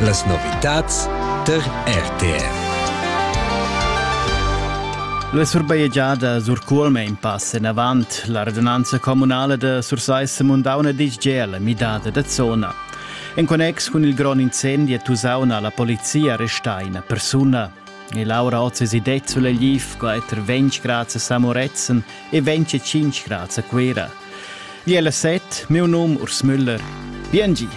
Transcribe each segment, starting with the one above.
Las novitads tar RTR. La surbajegiada Surcuolma in pass enavant. La radunanza communala da Sursaissa Mundauna dice già la midada da zona. En connex cun il grond incendi a Tusauna ha la polizia arrestà una persona. E Laura Ozzi det sulla LIF, quater 20 grads a Samoretzen e 25 grads a Quera. Di ella set, miu num Urs Müller. Bien gi.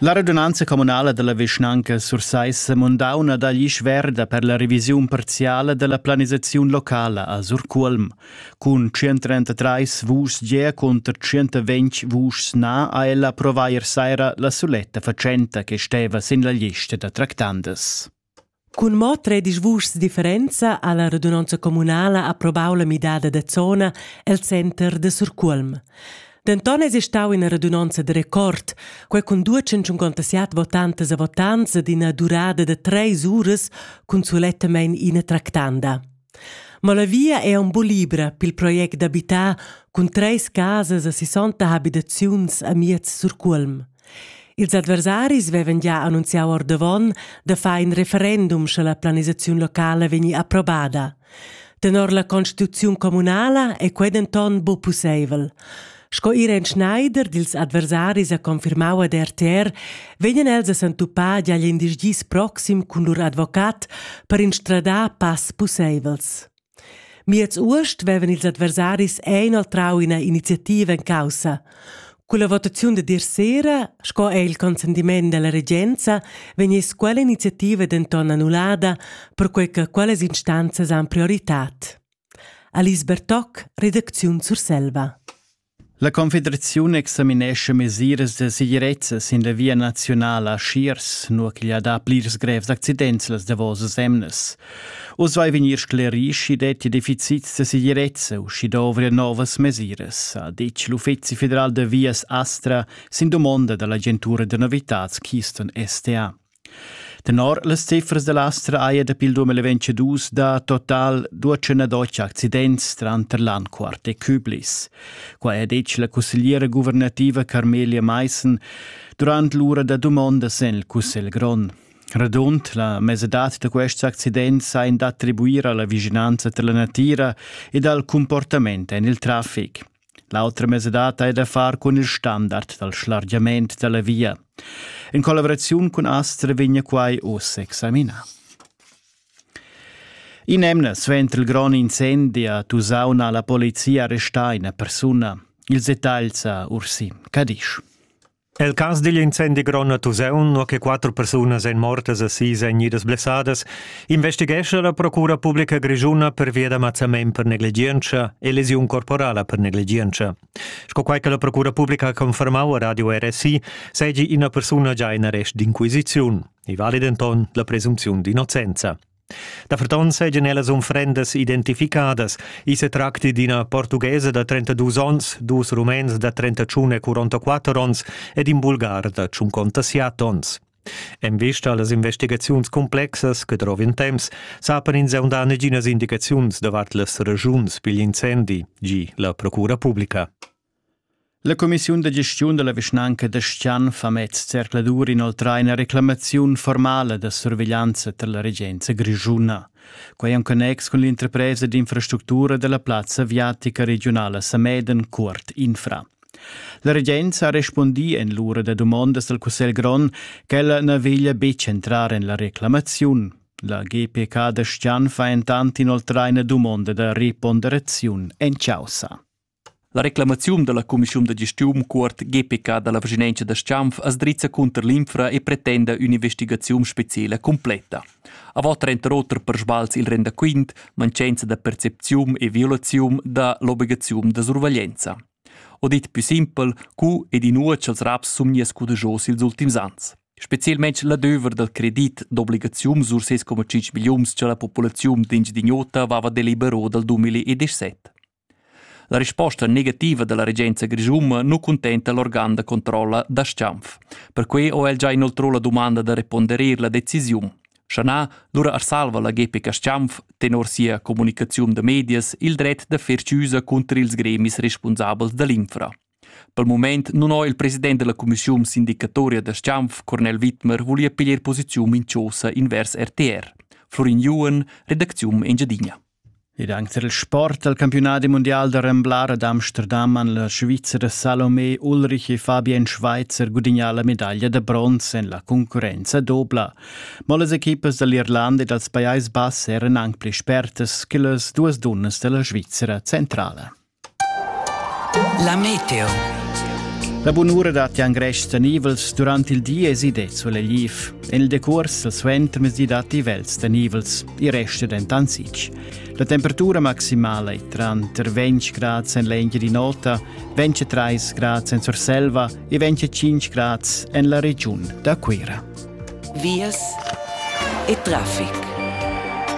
La radunanza communala della vischnanca Sursaissa mundauna dagli sverda per la revisiun parziale della planisazione locala a Surculm. Cun 133 vuschs ge conter 120 vuschs na ha ella provai er saira la suletta facenta che steva sin la lista da tractandas. Cun mo tredisch vuschs differenza ha la radunonza communala approvau la midada da zona el center da Surcuolm. Denton eis ei stau ina radunonza de record, quei cun duecentschuncontaseat votantas e votants ed ina durada da treis uras cun sulettamein ina tractanda. Ma la via è un po libra pel project d'abitar cun treis casas e 60 habitaziuns a Miez Surcuolm. Ils adversaris vevan gia annunziau ordavon da far in referendum sche la planisaziun locala vegni approbada. Tenor la constituziun communala è quei denton bu pusseivel. Sco Irene Schneider dils adversaris ha confirmau ad RTR, vegnan els a s'entupar agl in dis proxim cun lur advocat per instradar pass pusseivels. Miez uost vevan ils adversaris inoltrau ina iniziativa en caussa. Con la votaziun de dir sera, sco è il consentiment della regenza, vegniss quella iniziativa denton annullada, perquei che quellas instanzas han prioritad. Alice Bertoc, redacziun Surselva. La Confederaziun examinescha mesiras da segirezza sin la via naziunala a Schiers, nua ch'igl ha dà plirs grevs accidents las davosas emnas. Uss vai vegnir sclerì, sch'i dettia deficits da segirezza u sch'i dovria novas mesiras, ha ditg l'Uffizi federal da vias Astra sin dumonda da l'agentura da novitads Keystone STA. Tenor las cifras da l'Astra haja dapi il 2022 dà total 212 accidents tranter Landquart e Küblis. Qua ha detg la cussegliera guvernativa Carmelia Meissen durant l'ura da dumondas en il Cussegl grond. Radund la mesadad da quests accidents ein d'attribuir alla vicinanza dalla natira ed al comportament en il traffic. L'autra mesadata è da far cun il standard dal schlargiament da la via. In collaboraziun cun Astra vegna quai uss examinà. In'emna suenter il grond incendi a Tusaun ha la polizia arrestà ina persuna. Il detagl sa Ursi Cadisch. El cas digl incendi grond a Tusaun, nua che quatter persunas èn mortas e sis èn idas blessadas, investighescha la Procura publica grischuna pervia da mazzament per negligientscha e lesiun corporala per negligientscha. Sco quai che la Procura publica ha confermau a Radio RSI, seigi ina persuna già in arrest d'inquisiziun. I vali denton la presunziun d'innocenza. Daferton seigien ellas unfrendas identificadas. I se tracti d'ina portughesa da 32 onns, dus rumens da 31 e 44 onns ed in bulgar da 57 onns. En vista allas investigaziuns complexas che drovin temps, sapan ins aundà neginas indicaziuns davart las regiuns pigl incendi, gi la Procura Publica. La cumissiun da gestiun dalla vischnanca da Skian fa mez zercladur inoltrar ina reclamaziun formala da surveglianza per la regenza grischuna. Quei en connex cun l'interpresa d'infrastructura della plazza aviatica regionala Sameden Cuort Infra. La regenza ha respondi en l'ura da domandas del Cussel Gron che ella na veglia betg entrar en la reclamaziun. La GPK da Skian fa entant inoltrar ina domanda da reponderaziun en causa. La reclamaziun dalla cumissiun da gestiun cuort GPK dalla vischinanza da Schanf as drizza cunter l'infra e pretenda ün'investigaziun speciela completa. A vot trenta oter per sbals il rendaquint, mancenza da percepziun e violaziun da l'obligaziun da surveglienza. O dit più simpel, cu ed inua ch'els raps sun gnies cudegios ils ultims ans. Spezielmente l'adöver dal credit d'obligazium sur 6,5 millions che la populaziun d'ingidignota vava delibero dal 2017. La risposta negativa dalla regenza grischuna nu cuntenta l'organ da controlla da Schanf. Perquei ho el già inoltrò la dumanda da reponderer la decisiun. Schanà lura arsalva la GPK Schanf tenor sia comunicaziun da medias il dret da fer chiusa cunter ils gremis responsabels dall'infra. Per moment non ho il president della commissiun sindicatoria da Schanf, Cornel Wittmer, voglia piglier posiziun in chosa invers RTR. Florin Juhen, redacziun Engiadina. Ed anc tar il sport al campiunadi mundial da remblar ad Amsterdam han la Svizra Salomé Ulrich e Fabien Schweizer gudignà la medaglia da bronz en la concurrenza dobla. Mo las equipas da l'Irlanda e dals Pajais Bass eran anc pli spertas che las duas dunnas da la Svizra centrala. La meteo. La bunura datti an greschs tenivels durant il di e si det solegliv. En il decurs dal suentermezdi datti vels tenivels, i resta dentant sitg. La temperatura maximala è tranter 20 grad en l'engia di nota, 23 grad en Surselva e 25 grad en la regiun da Cuira. vias e traffic.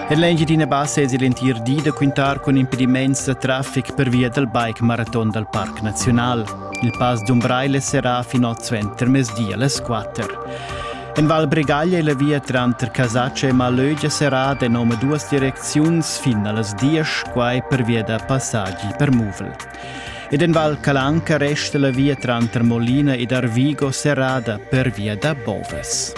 En l'Engiadina Bassa es l'entir di da quintar cun impediments da traffic per via dal bike maraton dal Parc Naziunal. Il pass d'Umbraile serà fin oz ventermesdi alle 4. En Val Bregaglia e la via tranter Casaccia e Malögia serà en nome duas direcziuns fin allas 10, quai per via da passaggi per Muvel. Ed en Val Calanca resta la via tranter Molina ed Arvigo serrada pervia da bovas.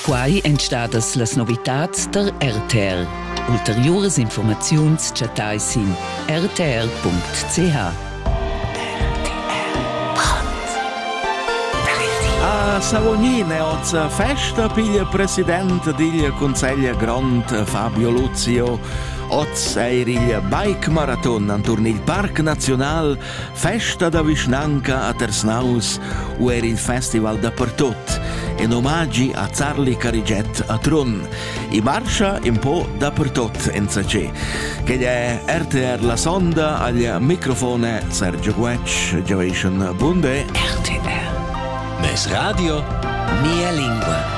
Quai èn stadas las novitads tar RTR. Ulteriuras informaziuns chattai sin rtr.ch. A Savognin è oz festa, piglia president digl Consiglio Grond Fabio Lucio. Oz eir il bike-maraton anturn il Parc Naziunal, festa da vischnanca a Tersnaus u er il festival dapertut, in omagi a Zarli Carigiet a Trun. I marscha un po dapertut insacé. Che è RTR La Sonda al microfone Sergio Guetsch, Generation Bunde. RTR. Mes radio, mia lingua.